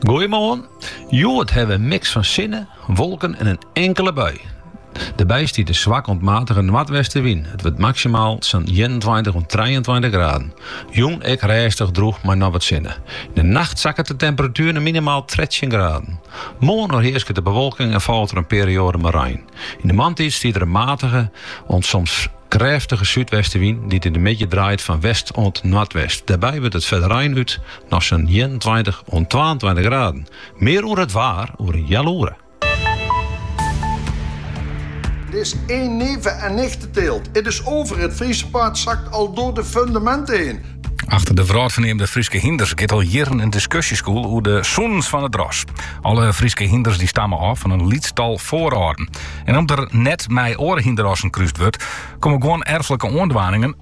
Goeiemoarn. Hjoed hawwe we in miks fan sinne, wolken en in inkele bui. Dêrby stiet in swak oant matige noardwestenwyn. It wurdt maksimaal sa'n ienentweintich oant trijeentweintich graden. Jûn ek rêstich droech mei noch wat sinne. Yn de nacht sakket de temperatuer nei minimaal trettjin graden. Moarn oerhearsket de bewolking en falt der in perioade mei rein. Yn de moarntiid stiet der in matige oant soms krêftige súdwestenwyn dy't yn de middei draait fan west oant noardwest. Dêrby wurdt it foar de rein út nei sa'n ienentweintich oant twaentweintich graden. Mear oer it waar oer in heal oere. Het is één neven- en nichtenteelt. Het is over, het Friese paard zakt al door de fundamenten heen. Achter de wrâldferneamde Fryske hynders giet al jierren in diskusje skûl oer de sûnens fan it ras. Alle Fryske hynders dy stamme ôf fan in lyts tal foarâlden. En om't der net mei oare hynderrassen krúst wurdt, komme guon erflike oandwaningen,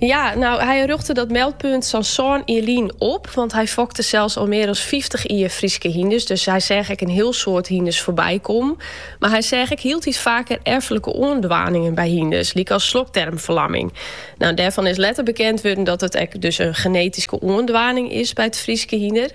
Ja, nou, hy rjochte dat meldpunt sa'n sân jier lyn op, want hy fokte sels al mear as fyftich jier Fryske hynders, dus hy seach ek in hiel soad hynders foarby kommen. Mar hy seach ek hieltyd faker erflike oandwaningen by hynders, lykas slokdermferlamming. Nou, dêrfan is letter bekend wurden dat it ek dus in genetyske oandwaning is by it Fryske hynder.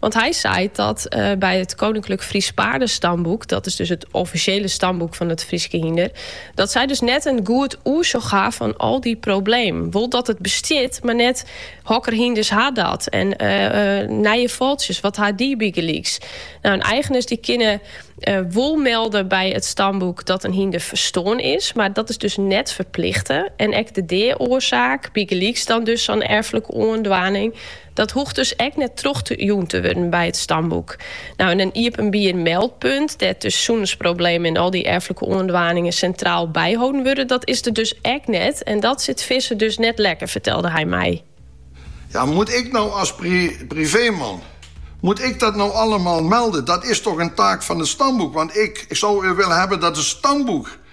Want hy seit dat by it Koninklijk Friesch Paarden-Stamboek, dat is dus it offisjele stamboek fan it Fryske hynder, dat sy dus net in goed oersjoch ha fan al dy problemen. Wol dat it bestiet, mar net hokker hynders ha dat en nije fôltsjes, wat ha dy bygelyks? Nou, en eigeners dy kinne wol melde by it stamboek dat in hynder ferstoarn is, mar dat is dus net ferplichte en ek de dea-oarsaak, bygelyks dan dus sa'n erflike oandwaning, Dat hoecht dus ek net troch te jûn te wurden by it stamboek. Nou, en in iepenbier meldpunt, dêr't de sûnensproblemen en al dy erflike oandwaningen sintraal byholden wurde, dat is der dus ek net. En dat sit Visser dus net lekker, fertelde hy my. Ja, moet ik nou als privéman, moet ik dat nou allemaal melden? Dat is toch een taak van het stamboek? Want ik zou willen hebben dat het stamboek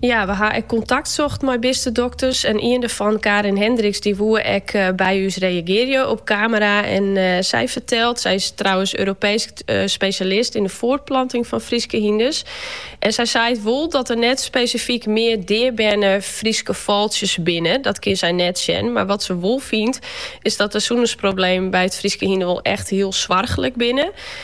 Ja, we ha ek kontakt socht mei bistedokters en ien derfan, Karin Hendriks, dy woe ek by ús reagearje op kamera en sy fertelt, sy is trouwens Europeesk spesjalist yn de foartplanting fan Fryske hynders en sy seit wol dat der net spesifyk mear deaberne Fryske fôltsjes binne, dat kin sy net sjen, mar wat se wol fynt is dat de sûnensproblemen by it Fryske hynder wol echt hiel soarchlik binne.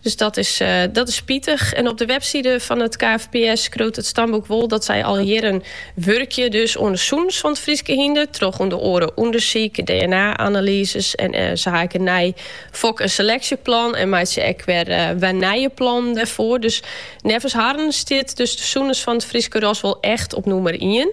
Dus dat is, eh, dat is spitich. En op de webside fan it KFPS skriuwt it stamboek wol dat zij al jierren wurkje dus oan de sûnens fan it Fryske hynder, troch ûnder oare ûndersyk, DNA-analyses en eh, ze ha ek in nij fok- en seleksjeplan en meitsje ek weer, eh, weer nije plannen dêrfoar. Dus neffens harren stiet dus de sûnens fan it Fryske ras wol echt op nûmer 1.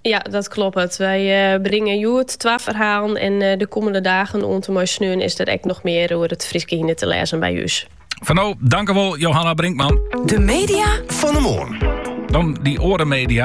Ja, dat kloppet. Wy eh, bringen hjoed twa ferhalen en eh, de komende dagen oant en mei sneon is der ek nog meer oer het Fryske hyne te lêzen by us. Foar no, tankewol, Johanna Brinkman. De media fan 'e moarn. Dan de oare media.